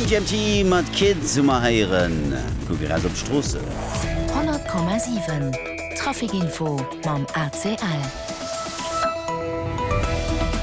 MGMT mat Kid Summer héieren. Mir kucke raus op d'Stroossen. 100,7 Trafic Info mam ACL.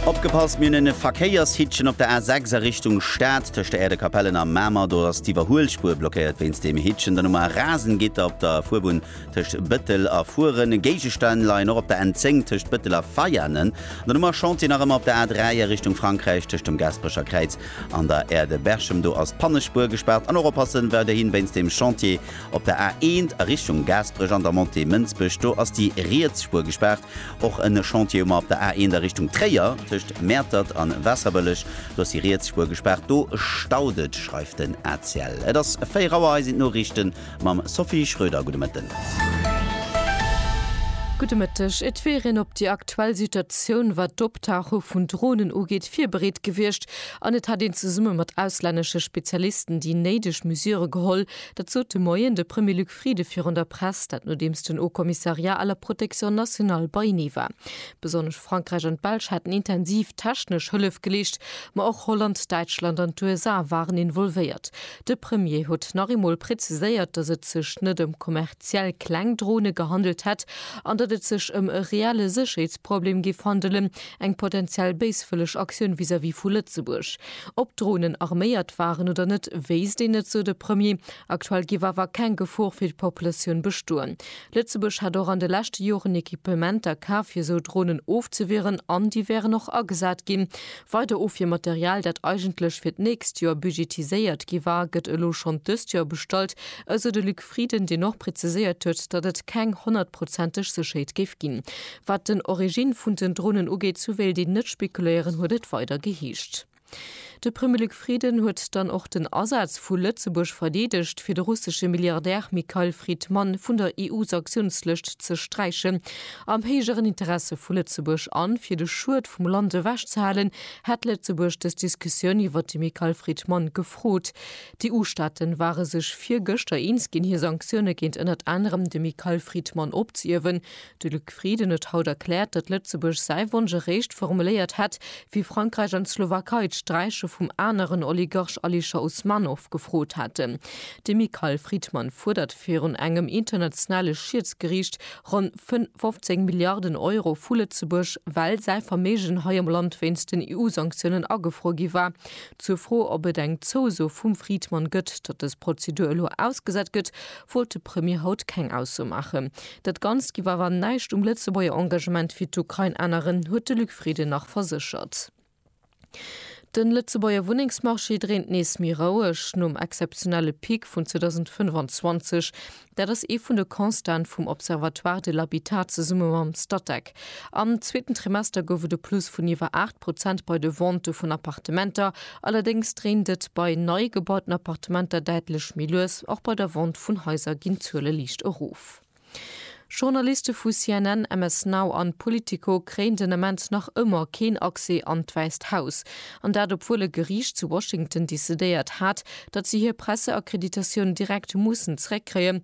Opgepasst, Mir hunn e Verkéiershittchen op der A6 a Richtung Stad. Tëscht der Aire de Capellen a Mamer, do ass d'Iwwerhuelspuer blockéiert wéinst deem Hittchen. Dann hu mer e rasen Gitter op der Fuerbunn tëscht Bëttel a Furen, e Géigestänn leien och op der N10 tëscht Bëttel a Veianen, an dann hu mer Chantier nach ëmmer op der A3 a Richtung Frankräich tëscht dem Gaasperecher Kräiz an der Aire de Berchem, do ass d'Pannespuer gespaart an och oppassen weiderhin wéinst dem Chantier op der A1 a Richtung Gaasperech an der Montée Mënsbech, do ass déi riets Spuer gespaart. Och e Chantier hu mer op der A1 a Richtung Tréier tëscht Mäertert an Waasserbëlleg, do ass déi riets Spuer gespaart, do staut et, schreift den ACL. Et ass 4 Auer, hei sinn d'Noriichten. Mam Sophie Schröder, gudde Mëtten. Gudde Mëtteg. Et wier een op déi aktuell Situatioun, wat d'Optauche vun Dronen ugeet, virbereet gewiescht an et hätt een zesumme mat auslännesche Spezialisten déi néideg Mesure geholl. Dat sot de Moien de Premier Luc Frieden virun der Press. Dat nodeems den Haut Commissariat à la protection nationale beienee war. Besonnesch Frankräich an d'Belsch hätten intensiv technesch Hëllef geleescht, ma och Holland, Däitschland an d'USA waren involvéiert. De Premier huet nach eemol präziséiert, datt et sech net ëm kommerziell kleng Drone gehandelt hätt an datt et sech ëm e reelle Sécherheetsproblem géif handelen, eng potenziell béiswëlleg Aktioun vis-à-vis vu Lëtzebuerg. Ob d'Dronen arméiert waren oder net, wéisst een net, sou de Premier. Aktuell géif awer keng Gefor fir d'Populatioun bestoen. Lëtzebuerg hätt och an de leschte Joren Equipementer kaf, fir esou Dronen ofzewieren an déi wären och agesat ginn. Weider Ofwiermaterial, dat eigentlech fir d'nächst Joer budgetiséiert gi war, gëtt elo schonn dëst Joer bestallt, esou de Luc Frieden, deen och preziséiert huet, datt et keng honnertprozenteg Sécherheet géif ginn, wat den Origine vun den Dronen ugeet. Souwéilt een net spekuléieren, huet et weider geheescht. De Premier Luc. Frieden huet dann och den Asaz vu Lëtzebuerg verdeedegt, fir de russesche Milliardär Mikhail Fridman vun der EU-Sanktiounslëscht ze sträichen. Am héijeren Interesse vu Lëtzebuerg a fir de Schued vum Land ewech ze halen, hätt Lëtzebuerg dës Diskussioun iwwert de Mikhail Fridman gefrot. D'EU-Staaten ware sech virgëschter eens ginn, hir Sanktioune géint ënnert anerem de Mikhail Fridman opzehiewen. De Luc Frieden huet haut erkläert, datt Lëtzebuerg säi Wonsch eréischt formuléiert hätt, wéi Frankräich an d'Slowakei d'Sträiche vum aneren Oligarch Alisher Usmanov gefrot haten. De Michael Friedman fuerdert virun engem internationale Schiedsgeriicht ronn 15 Milliarden Euro vu Lëtzebuerg, well säi Verméigen hei am Land wéinst den EU-Sanktiounen agefruer gi war. Zur Fro, ob et eng Zouso vum Friedman gëtt, datt dës Prozedur elo ausgesat gëtt, wollt de Premier haut keng Ausso maachen. Dat Ganzt giff awer näischt um Lëtzebuerger Engagement fir d'Ukrain änneren, huet de Luc Frieden nach verséchert. De Lëtzebuerger Wunnengsmarché dréint nees méi roueg nom exzeptionelle Pic vun 2025. Dat ass ee vun de Constaten vum Observatoire de l'habitat zesumme mam Statec. Am zweeten Trimester gouf et e Plus vun iwwer 8 Prozent bei de Ventë vun Appartementer. Allerdéngs dréint et bei nei gebauten Appartementer däitlech méi lues. Och bei der Vente vun Haiser ginn d'Zuele liicht erof. Journaliste vu CNN, MS Now an Politico kréien den Ament nach ëmmer keen Accès an d'Wäisst Haus. An dat obwuel e Geriicht zu Washington decidéiert hat, datt se hir Presseakkreditatioun direkt mussen zeréckkréien,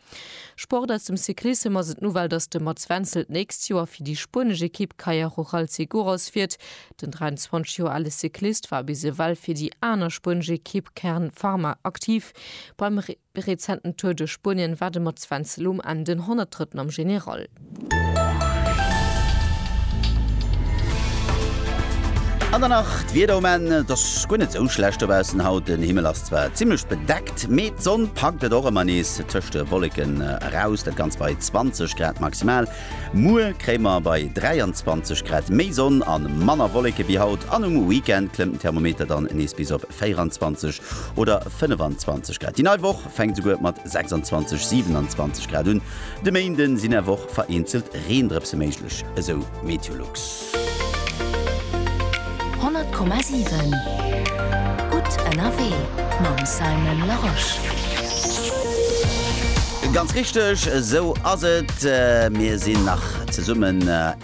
Sport aus dem Cyclissem ass et d'Nouvelle, dass de Mats Wenzel d'nächst Joer fir déi spuenesch Ekipp Kaja Rural Seguros fiert. Den 23 Joer ale Cyclist war bis ewell fir déi aner spuenesch Ekipp Kern Pharma aktiv. Beim rezenten Tour duerch Spuenien war de Mats Wenzel um Enn den Honnertdrëtten am General. An dann nach d'Wieder um Enn. Et ass guer net sou schlecht dobaussen haut. Den Himmel ass zwar zimmlech bedeckt, mee d'Sonn packt et och ëmmer nees tëscht de Wolleken eraus. Dat Ganzt bei 20 Grad maximal. Muer kréie mer bei 23 Grad méi Sonn a manner Wolleke wéi haut an um Weekend klëmmt den Thermometer dann nees bis op 24 oder 25 Grad. Déi nei Woch. fänkt souguer mat 26, 27 Grad un. De Méinde sinn awer och vereenzelt Reendrëpse méiglech, esou Meteolux. 100,7 gutt ënnerwee mam Simon Larosche. Ganz richteg, esou ass et. Mir sinn nach zesummen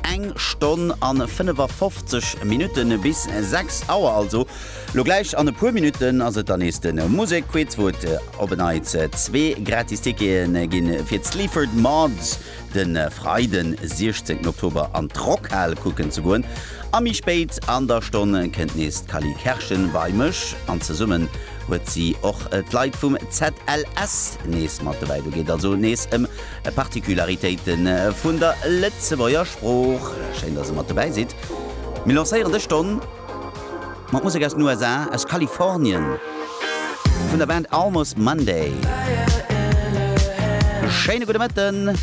eng Stonn an 55 Minutten bis 6 Auer, also Lo gläich an e puer Minutten ass et dann nees de Musekquiz, wou et op en Neits zwee gratis Tickete gi fir d'Sleaford Mods de Freiden, 16 Oktober an d'Rockhal kucken ze goen. A méi spéit an der Stonn kënnt nees d'Cally Kerschen bei mech an zesummen huet si och d'Leit vum ZLS nees mat dobäi. Do geet also nees ëm Particularitéite vun der Lëtzebuerger Sprooch. Schéin, dass e mat dobäi sidd. Mir lancéieren dës Stonn. Mat Musek aus den USA, aus Kalifornien, vun der Band Almost Monday. Schéine gudde Mëtten.